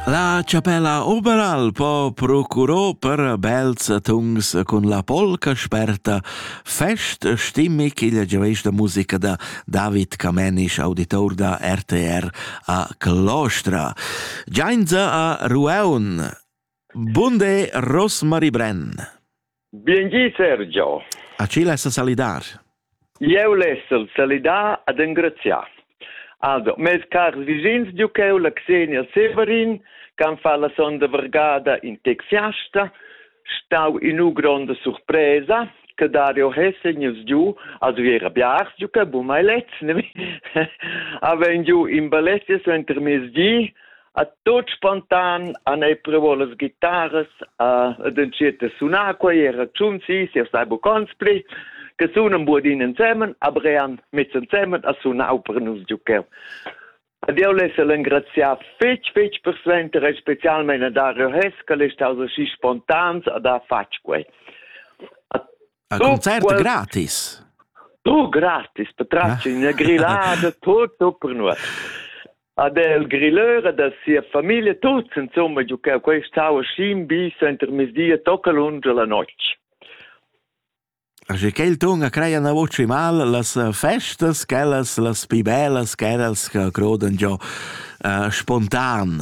La chapella Oberal po procurò per bels tungs cun la polca sperta fest stimmig igl giaveisch da musica da David Camenisch, auditor da RTR a Clostra. Giainza a Rueun Bunde Rosmarie Brenn. Biengi Sergio. A chi less salidar? Ieu lessel salidar ad engraziar. Also, mes cars vicins Duceu la Xenia Severin, can fa la sonda vergada in tec fiasta, stau in u gronda surpresa, che Dario Hessen ils giu als viera biars giu che bu mai lez, ne? Aven giu in ballettes enter mes di, a tot spontan an ei provò las guitarras a ed entschiet a sunar quei era tschun si si sai bucons pli che sunan buodin ensemen a brean mez ensemen a sunau per nus giucheu Ad eu less el engraziar fetg, fetg per suenter e specialmente a Dario Hess, che l'è stato aschi spontan ad ha fatg quei. A concert qual... gratis? Tu gratis, per tracci una grillada, tutto per noi. ad el grilleur e da sia famiglia tuts insomma giucau quei stau scin bi center mesdia tocca lunge la notg. Asche che il tunga creia na voci mal las festas quellas las pi bellas che eras che crodan giò uh, spontan.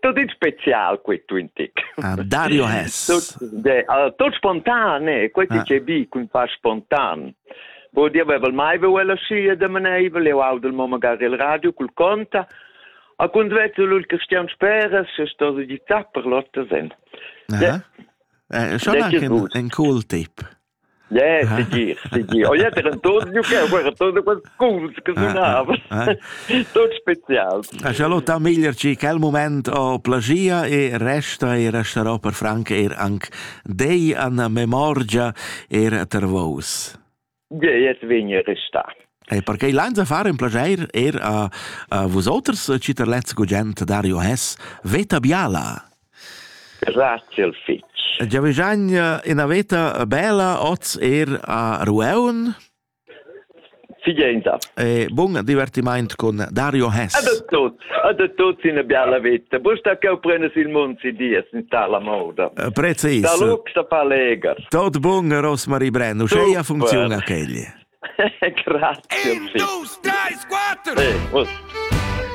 Tut in special qui tuin tic. Ah, Dario Hess. Tot spontan, eh? Quei ti ah. ce bi cun fa spontan. Bo dir vevel mai ve ella schi e de maneivel, eu au del mo magari il radio cul conta. A cund vezel ul Christian Speres, se sto di tapper lotte sen. Eh? Eh, schon anche in cool tip. Yeah, sigir, sigir. Oh, ja, der Antonio, che è quel Antonio quel sculs che sunava. Tot special. Charlotta Miglierci, quel moment ho plagia e resta e resterò per franc er anc dei an memorgia er ter vos. Ja, jetzt vegni resta. E perché l'anza fare un piacere er a, a vosoters, citerlezzo gugent Dario Hess, Veta Biala. Grazie fitg. Giavigegna ina veta bella oz er a Rueun? Figenda. E bun divertiment con Dario Hess. Ad tutti, ad tutti una bella vita. Busta che prenes il mund si dies in tala moda. Eh, Prezzi ist. Da lux da fa leger. Tot bun Rosmarie Brenno, sceia funziona chegli. Grazie. In 2, 3, 4. Eh,